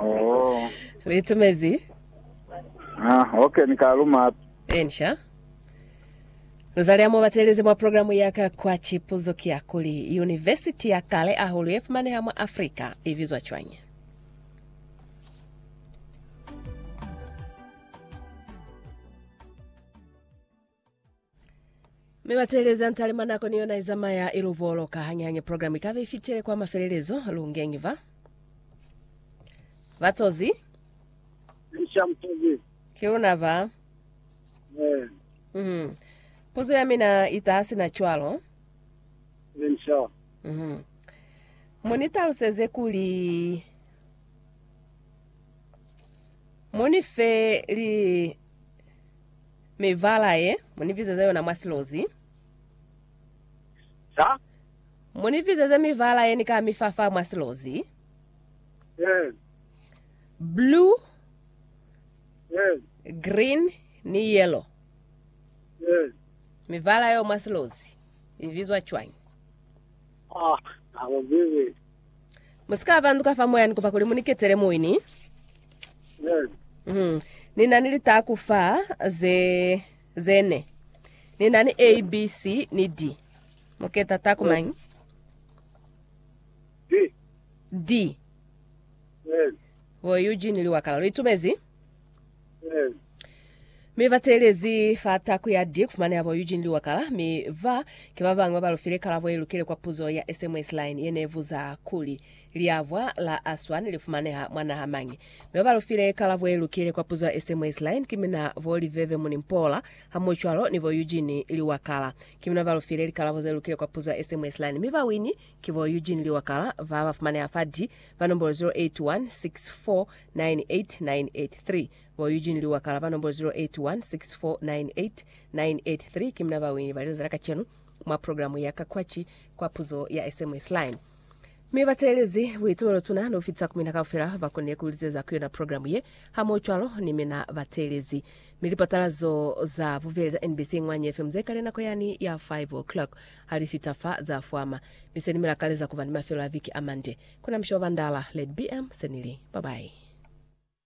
Oh. Litumezi. Ah, okay, ni ka luma hape. Ensha. Nuzali amo batelezi mwa programu ya ka kwa chipuzo ki ya kuli University ya kale ahulu ye fumaneha mwa Afrika i bizwa cwañi? Mi bateleza ntalima nako ni yona izamaya iluboloka hanyihanye program ikabe ifitile kwa mafelelezo lungengi va batozi Isha mtozi. kiluna va Eh, mm. puzo ya mina itasi na cwalo insha. mm. munitaluseze kuli munife li Mibala ye mu ni bizeze yona mwa silozi. Sa? Mu ni bizeze mibala ye ni ka mi fa fa mwa silozi. Ee. Blue, Ee. green, ni yellow. Ee. Mibala yeo mwa silozi i bizwa cwañi? Ah, na go zizi. Musika banduka fa moya nikupa kuli muniketele muini. Yes. Mm. Nina ni litaku fa ze zene. Nina ni A, B, C ni D. Muketa taku Yes. manyi? Di. D. Yes. Wo Eugene liwakala. Litumezi? mi ba teelezi fa tako ya di kufumana yabo Eugene Liwakala, mi ba ki ba bangwe ba lufile kalabo ye lukile kwa puzo ya SMS line ye ne buza kuli, Liabwa la Aswan li fumaneha mwa naha mañi? Mi ba ba lufile kalabo ye lukile kwa puzo ya SMS line ki mina bo Liveve Munimpoola, hamohwacwalo ni bo Eugene Liwakala. Ki mina ba lufile likalabo ze lukile kwa puzo ya SMS line, mi bawini Ki bo Eugene Liwakala ba ba fumaneha fa di fa nombolo 0816498983. Bo Eugene Liwakala ba nombolo 0816498983 ki muna ba winile ba lizazi la kacenu mwa progilamu ya Ka Kwaci kwa Puzo ya SMS Line. Mi ba teelezi buitumelo tuna ni ku fitisa ku mina kaufela ba konile ku lizeza ku yona progilamu ye, hamohocwalo ni mina ba teelezi. Mi lipatalazo za bubeli za NBC Ngwanyi FM ze kale nako yani ya 5 o'clock. Ha li fita fa, za fwama. Mi se ni mi lakaleza kuba ni mafelo a viki a mande. Kona mushe wa bandala. Led BM. Se ni li, Bye-bye.